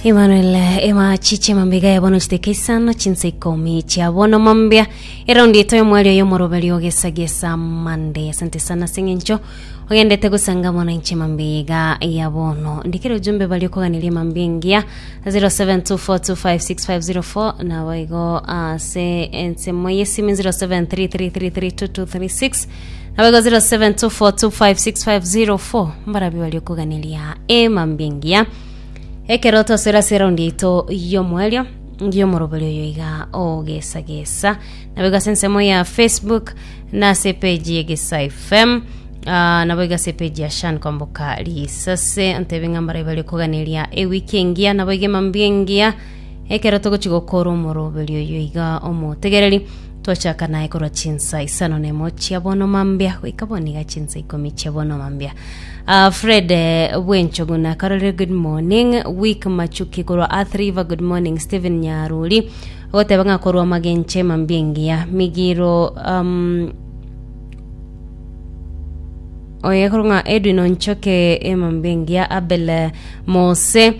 Emmanuel ema chiche mambiga ya bono chiteka isano chinsa ikomi chia bono mambia eraundi eto y'omwari oyo omoroberi ogesagesa mande asante sana sing'encho ogendete gosanga bono inche mambiga ya bono ndikire ujumbe bari okoganirie mambia engiya 0724256504 nabo igo ase ensemo y'esimi 0733332236 Abego 0724256504 mbarabio bari okuganeria emambi engiya ekero tosera ase eraundi yaito y'omoerio y'omoroberi oyo iga ogesagesa naboigo ase ensemo ya facebook na ase epeji y'egesa fm Ah, naboigo ase epeji ya shan kwamboka risase ntebe ng'a mbarabio bari okuganeria ewiki engiya naboigo emambi engiya ekero togochi gokora omoroberi oyo iga omotegereri Twachaka naye korwa chinsa isano nemo chia bono mambia goika bono iga chinsa ikomi chia bono mambia. Ah, Fred eh, Bwenchoguna, Karolire good morning, Week Machuki korwa Earth River good morning, Stephen Nyaruri goteba ng'a korwa magenche mambia engiya migiro um, oye korwa ng'a Edwin Onchoke emambia engiya Abel eh, Mose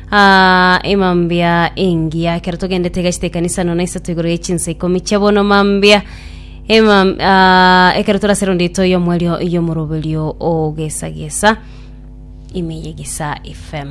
Aa, emambia engiya ekero togendete egacheta ekanisa nono isato igoro y'echinsa ikomi chia bono mambia emam aa, ekero torasero ndeto y'omwerio y'omoroberio ogesagesa ime y'egisa fm